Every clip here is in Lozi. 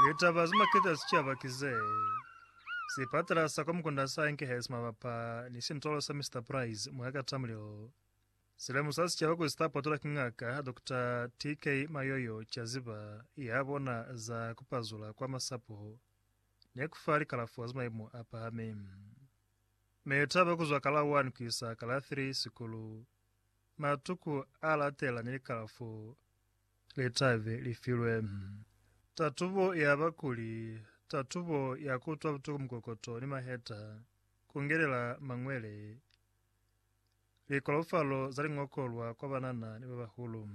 Litaba ze makete a sicaba ki ze, Sipatala sa kwa Mukunda sa enkehezi mabapa ni sintolo sa Mister Price mwa Katamlilo. Si lemusa sicaba kuli si ta potolwa ki Ngaka Doctor TK Mayoyo Caziba ya bona za ku pazula kwa masapo ni ku fa likalafo za maimo a pahami. Mitaba ku zwa ka la 1 ku isa ka la 3 sikulu, matuku a latela ni likalafo litabe li filwe. Tatubo ya ba kuli, tatubo ya ku utwa butuku mukokoto ni maheta, ku ngelela mañwele, likolofalo za liñokolwa kwa banana ni ba bahulu,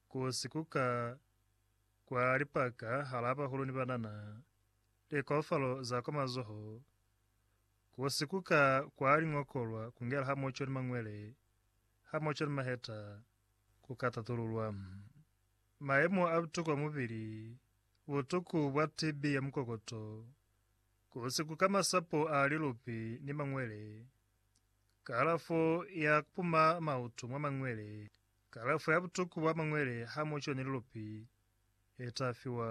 ku sikuka kwa lipaka halaa bahulu ni banana, likolofalo za kwa mazoho, ku sikuka kwa liñokolwa, ku ngela hamoco ni mañwele, Ha mu cwela maheta, ku ka tatululwa mayemo a butuku a mubili, butuku bwa TB ya mukokoto, ku siku ka masapo a lilupi ni mangwele, kalafo ya ku puma mautu mwa mangwele, kalafo ya butuku bwa mangwele ha mu cwela ni lilupi le ta fiwa,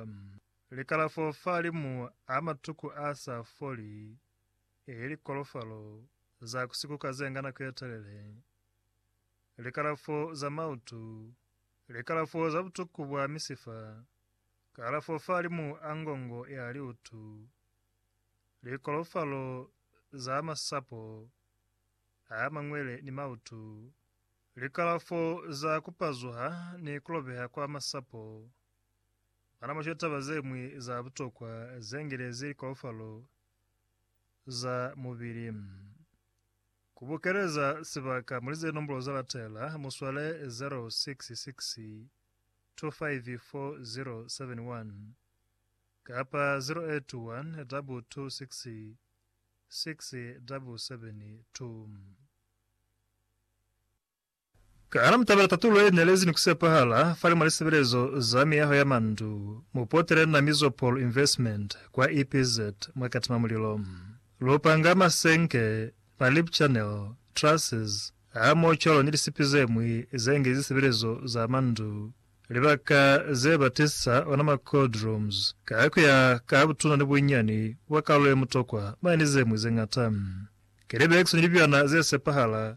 likalafo fa limu a matuku a sa foli. Ki likolofalo za ku sikuka ze nga nako ye telele, likalafo za mautu, likalafo za butuku bwa misifa, kalafo fahalimu a ngongo ya liutu, likolofalo za masapo a mangwele ni mautu, likalafo za ku pazuha ni ku lobeha kwa masapo, mwanamaco taba ze ñwi za butokwa ze ngilezi likolofalo za mubili. Ku bukeleza sibaka muli ze nombolo za latela, mu swale 0662544071 kapa 0812266772. Ka hana mutabela tatulo ye nelezi ni kusepahala fali mwa lisebelezo za miyaho ya mandu, mupotele na Mizopol Investment kwa EPZ mwa Katima Mulilo. Lu panga masenke, ma lip channel, trusses, hamoho cwalo ni lisipi ze ñwi ze nge zisebelezo za mandu, libaka ze ba tisa ona ma cold rooms, ka kuya ka butuna ni bunyani bwa kalulo ye mutokwa mane ni ze ñwi ze ñata. Ki libekisi ni libyana ze sepahala.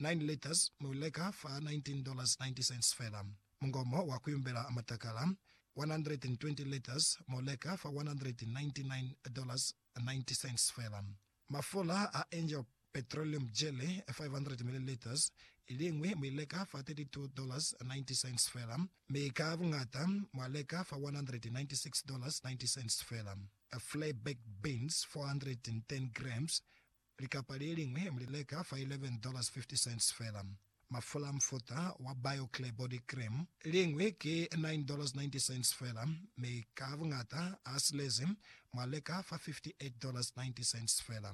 Nine liters mu i leka fa $19.90 fela. Mungomo wa ku yumbela matakala, 120 liters mu leka fa $199.90 fela. Mafula a Angel Petroleum Jelly, 500 milliliters, iliñwi mu i leka fa $32.90 fela, mi ka buñata mwa leka fa $196.90 fela. Flair Baked Beans, 410 grams, Likapa le liñwi mu li leka fa $11.50 fela. Mafula a mufuta wa BioClear Body Cream liñwi ki $9.90 fela, mi ka buñata a silezi mu a leka fa $58.90 fela.